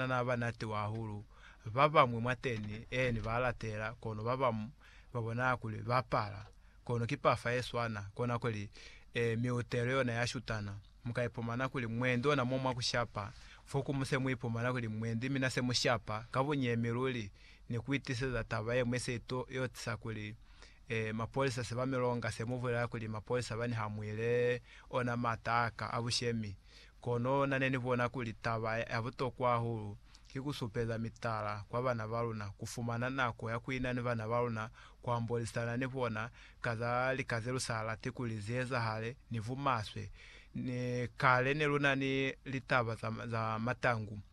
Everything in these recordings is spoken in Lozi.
Banana ba natiwa hahulu. Ba bañwi mwateni, eeni, ba latela, kono ba bañwi ba bona kuli ba pala. Kono ki pafa ye swana. Kona kuli, e, miutelo yona ya shutana. Mu ka ipumana kuli mwendi ona mo mwa ku shapa, fo ku mu se mu ipumana kuli mwendi mina se mu shapa ka bunyemi luli, ni ku itiseza taba ye ñwi se to yo tisa kuli, e, mapolisa se ba mi longa, se mu bulela kuli mapolisa bani ha mu ile ona mata a ka a bushemi. Kono na ne ni bona kuli taba ya butokwa hahulu ki ku supeza mitala kwa bana ba luna, ku fumana nako ya ku ina ni bana ba luna, ku ambolisana ni bona ka za lika ze lu sa lati kuli zi ezahale, ni bumaswe. Kale ne lu na ni litaba za matangu.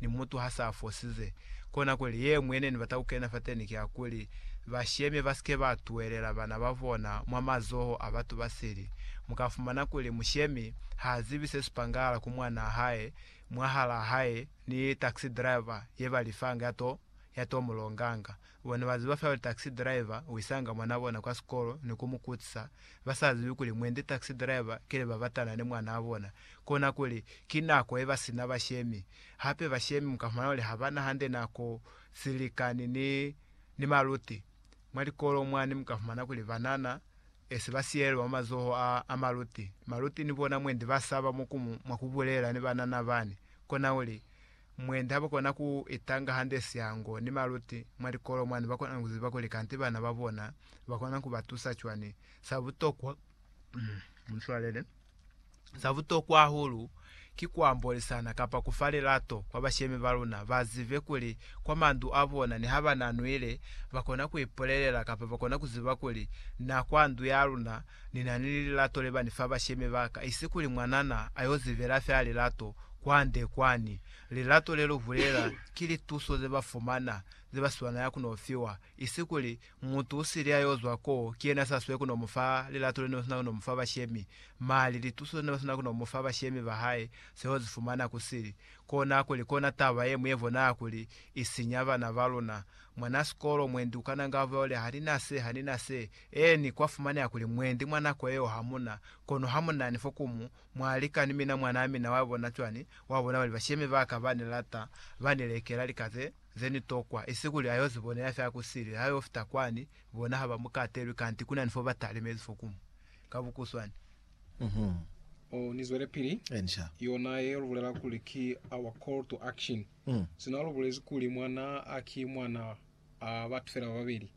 Ni mutu ha sa fosize, kona kuli ye ñwi ne ni bata ku kena fateni ki ya kuli, bashemi ba sike ba tuhelela bana ba bona mwa mazoho a batu ba sili. Mu ka fumana kuli mushemi ha zibi se si pangahala ku mwanaa hae, mwahalaa hae, ni taxi driver ye ba lifanga ya to, ya to mu longanga. Bona baziba fela taxi driver uisanga mwanabona kwa sikolo ni kumukutsisa, basazibi kuli mwendi taxi driver kile babatana ni mwanabona. Kona kuli, ki nako yebasina bashemi. Hape bashemi mukafumana kuli habana hande nako silikani ni ni maluti. Mwa likolo mwani mukafumana kuli banana esi basiyelelwa mwa mazoho a a maluti. Maluti ni bona mwendi basaba mwakubulela ni banana bani. Kona kuli, Mwendi habakona ku itanga hande siango ni maluti mwa likolo mwani bakona ni kuziba kuli kanti bana ba bona bakona ni kubatusa cwani. Sa butokwa, mu swalele, sa butokwa hahulu ki kuambolisana kapa kufa lilato kwa bashemi ba luna, bazibe kuli kwa mandu a bona niha bana nwile bakona ku ipulelela kapa bakona kuziba kuli na kwa ndu ya luna Ni na ni lilato le ba ni fa bashemi ba ka, isi kuli mwanana a yo zivela fela lilato kwande kwani. Lilato le lu bulela ki lituso ze ba fumana, ze ba swanela ku no fiwa, isi kuli mutu u sili a yo zwa ko ki yena sa swe ku no mu fa lilato le ne ba swanela ku no mu fa bashemi. Mali, lituso ze ne ba swanela ku no mu fa bashemi ba hae se yo zi fumana ku sili. Kona kuli kona taba ye ñwi ye bonala kuli i sinya bana ba luna. Mwanasikolo, mwendi u kananga a bulela, Ha ni na se, ha ni na se. Eeni, kwa fumaneha kuli mwendi mwa nako yeo ha mu na, kono ha mu nani fo ku mu mwa lika ni mina. Mwanaa mina wa bona cwani? Wa bona bali bashemi ba ka ba ni lata, ba ni lekela lika ze, ze ni tokwa. Isi kuli a y'o zi bonela fela ku sili, ha y'o fita kwani, bona ha ba mu katelwi, kanti ku na ni fo ba talimezi fo ku mu. Ka bukuswani. Uhum. Oh, ni zwelepili. Eeni, sha. Yona ye lu bulela kuli ki our call to action. Sina lu bulezi kuli mwanaa a ki mwana a batu fela ba babeli,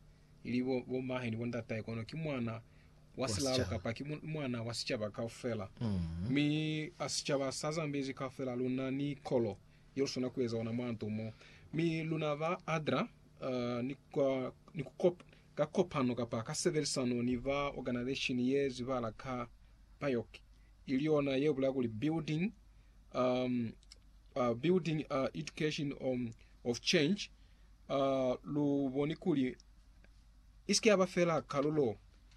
ili bo, bo mahe ni bo ndatahe, kono ki mwana wa silalo kapa ki mwana wa sicaba kaufela. Mm. Mi a sicaba sa Zambezi kaufela luna ni kolo ye lusona kueza ona mwa nto mo. Mi luna ba adra uh, ni, kwa, ni kukop, ka kopano kapa ka sebelisano ni ba organization ye zibala ka BIOC, ili yona ye bulaya kuli Building um, uh, building uh, education um, of change A lu boni kuli i si ke ya ba fela kalulo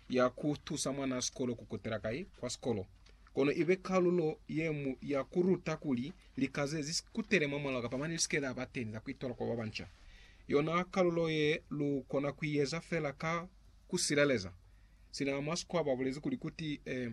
ya ku tusa mwanaa sikolo ku kutela kai kwa sikolo, kono i be kalulo ye mu ya ku ruta kuli lika ze zi kutele mwamulaho kapa mane li si ke la ba teñi za ku itola kwa ba banca? Yona kalulo ye lu kona ku i eza fela ka ku sileleza. Sina mwa sikwaba a bulezi kuli, Kuti, eh,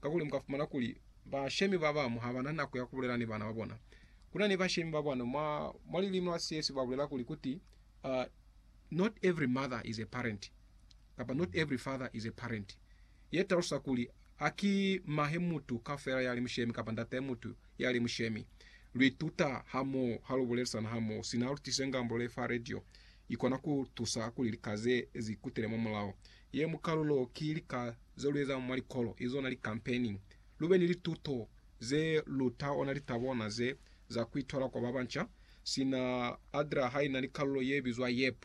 Kakuli mu ka fumana kuli bashemi ba bamu ha ba na nako ya ku bulela ni bana ba bona. Ku na ni bashemi ba bano mwa, mwa lilimi la Siyesu ba bulela kuli ku ti, uh, Not every mother is a parent, kapa not every father is a parent. Ye talusa kuli a ki mahe mutu kafela ya li mushemi kapa ndatahe mutu ya li mushemi. Lu ituta ha mo ha lu bulelisana ha mo, sina lu tise ngambulo ye fa radio. I kona ku tusa kuli lika ze zi kutele mwa mulao. Ye mu kalulo ki lika ze lu eza mwa likolo izo na likampeni. Lu be ni lituto ze lu ta ona litabo na ze za ku itola kwa ba banca, sina Adra ha ina ni kalulo ye bizwa YEP.